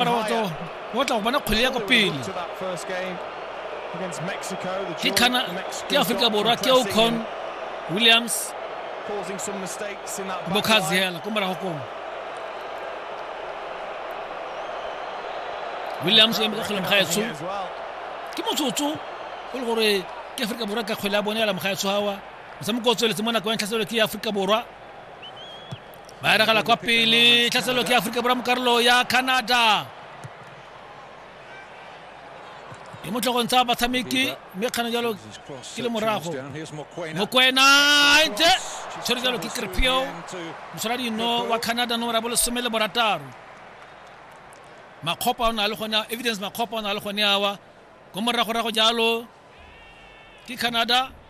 go tla go bona kgwele ya ko pele ke kana ke aforika borwa ke ocon williams bokazi hela ko morago komo williams o emetse kgwele mogaetsho ke motsotso go le gore ke aforika borwa ka kgwele ya bone ya la mogaetsho gawa motshameko o tsweletse mo nako ya ntlhaselelo ke ya aforika borwa ba eragela kwa pele tlhaselelo ke aforika borwa mo karolo ya canada ke mo tlhogong tsa batshameki mme kgana jalo ke le morago mokwena ntse tshwere jalo ke krepio mosola dino wa canada nomoro ya bolesome le borataro makgopa o na le gone evidence makgopa o na le gone awa ko moragorago jalo ke canada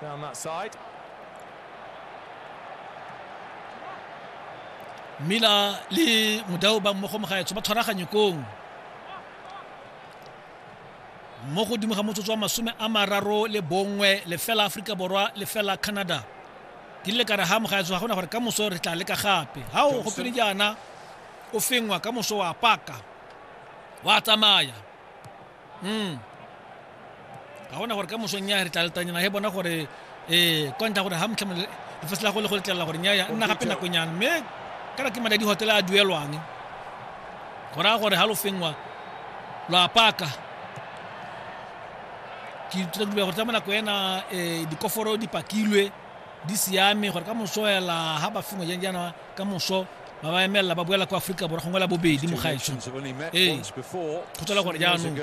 down that side. Mila le modau ba mmogo mogaetsho ba tshwaraganye kong mo godimo ga motsotso wa masome a mararo le bongwe lefela aforika borwa lefela canada ke rile kare ga mogaetso ga gona gore ka moso re tla leka gape ga o gopele jaana o fengwa ka moso wa paka wa tsamaya mm ga gona gore ka mosong ya re tla letanyana he bona gore ee kwa ntlha gore ga motlha lefase la go le go letlelela gore nyaya nna gape nakonyana mme kana ke madi hotela a duelwang go raya gore ga lo fengwa lo apaka ke ithuta ke gore tsa mo nako ena um dikoforo di pakilwe di siame gore ka mosoela ga ba fengwa jang jaana ka moso ba ba emelela ba boela kwa aforika borwa gongwe la bobedi mo gaetso ee go tswela gore jaanong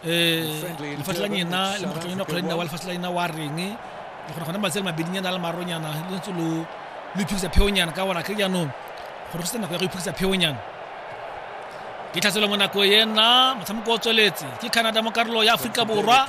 um lefatshe la nyena le mokgatlho nyena kgwele nna wa lefatshe la nyena wa reng le gore gone matsele mabedinyana a le maronyana le ntse lo lo iphedisa pheonyana ka gore a kry jaanong gore go se nako ya go iphedisa pheonyana ke tlhatselo mo nako ena motshameko o tsweletse ke canada mo karolo ya aforika borwa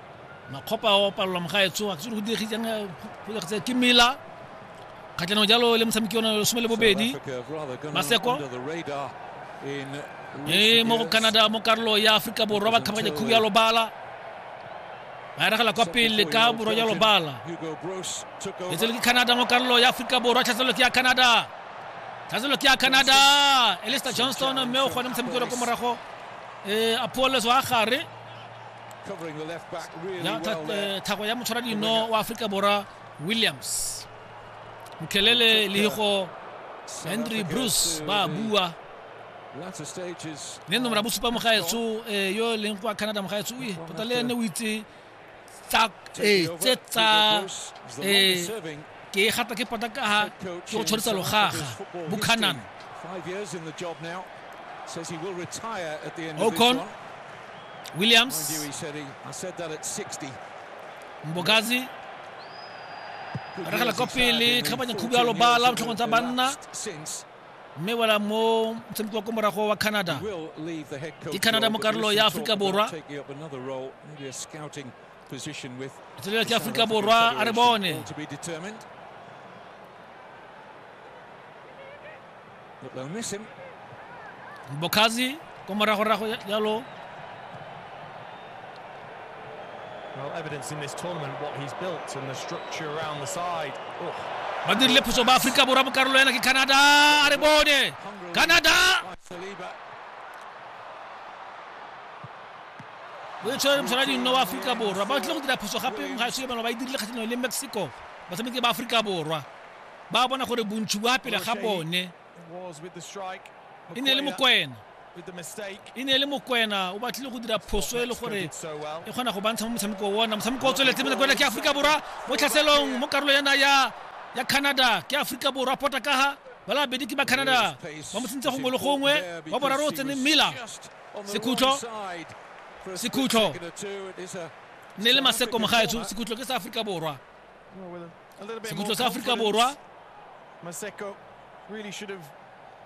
makgopa a opalelwa mo ga e tshoga ke se go diregisang eh, ke mela kgatlhanong jalo le motshameki one lesome le bobedi maseko mme mo go canada mo karolo ya aforika borwa ba kgabaganya khubu ya lobala ba eragela kwa pele ka borwa ya lobala e tsele ke canada mo karolo ya aforika borwa tlhaselelo ke ya canada tlhaselelo ke ya canada elista johnston mme o kgone motshameki ole ko morago um eh, apolles wa gare thako ya motshwara dino wa aforika borwa williams mokhelele le go henry bruce ba bua ne nomora bosupa mogaetso eh, yo e leng kwa canada mogaetso e tota le ene o itse tse tsa eh, ke e gata ke pota ka ha ke go tshwarisa logaga buchanan ocon williams mbokazi regela kwa pele tlhabanya khubu ya lobala botlhogong tsa banna mme wela mo motshameko wa ko morago wa canada ke canada mo karolo ya aforika borwa position with tsela ya Afrika Borwa a re bone to be determined. But they'll miss him. Bokazi ko moragorago yalo Well, evidence in this tournament what he's built and the structure around the side. Oh. ba dirile phoso ba Afrika Borwa mo karolo yana ke Canada a re bone Canada Saliba o e tshwere mosala dino wa aforika borwa ba tlile go dira phoso gape ga se ba e dirile kgatlhanong le mexico batshameki ba aforika borwa ba bona gore bontšhi bo pele ga bone e ne e le mokwena e ne e le mokwena o batlile go dira phoso e le gore e kgona go bantsha mo motshameko ona motshameko o tsweletse mokwena ke aforika borwa mo tlhaselong mo karolo yana ya ya canada ke aforika borwa pota kaga ba labedi ke ba canada ba mo tsentse gongwe le gongwe wa boraro o tsene miller sekhutlo sekhutlo ne le maseko mogaetso sekhutlo ke sa aforika borwa sekhutlo sa aforika borwa Maseko really should have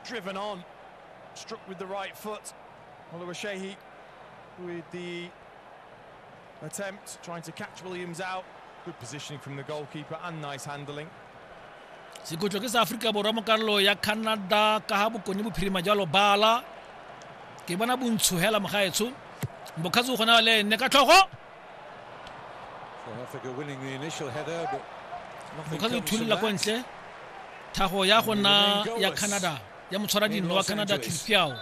driven on, struck with the right foot. Oluwaseyi with the Attempt, trying to catch Williams out. Good positioning from the goalkeeper and nice handling. sekutlo ke sa aforika borwa mo karolo ya canada ka ga bokone bophirima jwa lobala ke bona bontsho hela mogaetsho mbokgatsi o kgona le ene ka tlhogo mbokgatsi o thullela ko ntle thago ya gona ya canada ya motshwara dino wa canada clifiao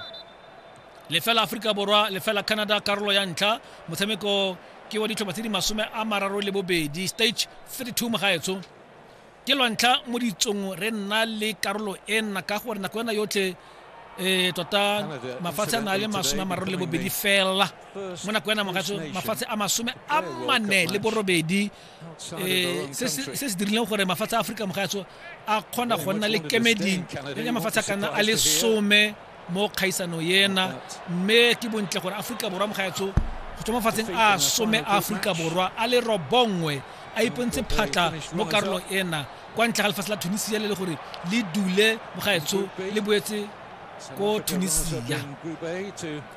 lefela aforika borwa lefela canada karolo ya ntlha motshameko ke wa ditlhopha tse di masome a mararo le bobedi stage 32 mogaetsho ke lwantlha mo ditsong re nna le karolo e nna ka gore nako ena yotlhe um tota mafatshe a na le masome a mararo le bobedi fela mo nako ena mogaetsho mafatshe a masome a mane le borobedi um se se dirileng gore mafatshe a aforika mogatso a kgona go nna le kemeding ya mafatshe a kana a le some mo kgaisano ena mme ke bontle gore aforika borwa mogatso go tswa mafatsheng a some a aforika borwa a le robongwe a ipontse phatla mo karolong ena kwa ntle ga lefatshe la tunisia le le gore le dule mogaetsho le boetse ko tunisia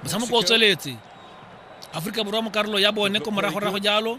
motshamoko o tsweletse aforika borwa mo karolo ya bone ko moragorago jalo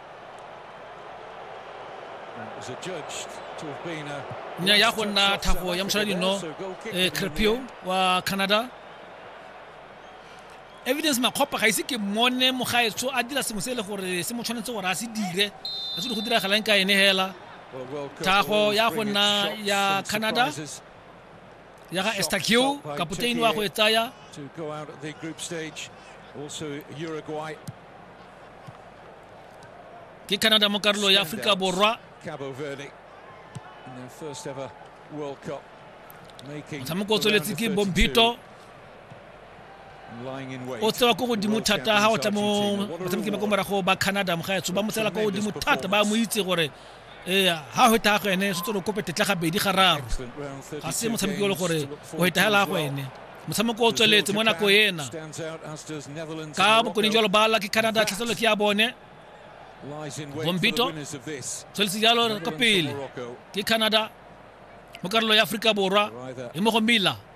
nya ya go nna thago ya mošala dino eh, crepio wa canada evidence makgopa ga ise ke mone mogaetso a dira sengwe se e le gore se mo tshwanetse gore a se dire a se di go diragalang ka ene hela thago ya go nna ya canada ya ga estakiu kapoteni wa go e tsaya ke canada mo karolo ya aforika borwa motshameko o tsweletse ke bompito o tsewa ko godimo thata ga o tla mo batshameki ba ko morago ba canada mogaetso ba mo tsela ko godimo thata ba mo itse gore ee ga go eta go ene se tsolo kope tetla gabedi ga raro ga se motshameki o le gore o eta hela go ene motshameko o tsweletse mo nako ena ka bokone jalo ba la ke canada tlhatselo ke ya bone gompito tsweletse jalo ka pele ke canada mo karolo ya aforika borwa e mo go mila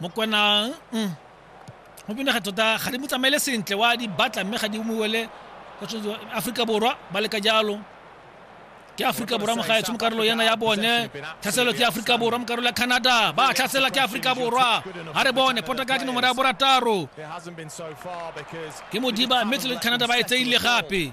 mokwana mm. go bonega tota ga di mo tsamaele sentle wa di batla mme ga di umowele aforika borwa ba leka jalo ke aforika borwa mogaetsho mo karolo yana ya bone tlhaselo ke aforika borwa mo karolo ya canada ba tlhasela ke aforika borwa ga re bone potaka ke nomoro ya borataro ke modiba mme tlele canada ba e tseile gape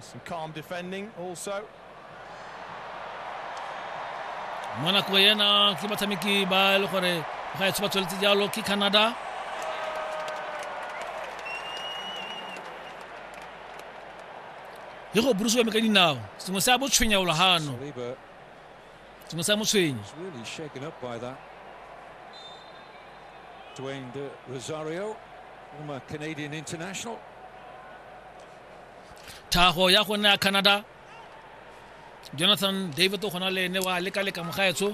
Some calm defending also. monaco ena ke batshameki ba e le gore ga e ba tsweletse jalo ke canada le go burusiwa me ka dinao sengwe se a botshwenyaulo gano tsy masaha mosehigny Dwayne de Rosario, former Canadian international. Taho ya go nna Canada Jonathan David o gona le ene wa leka leka mogaetsho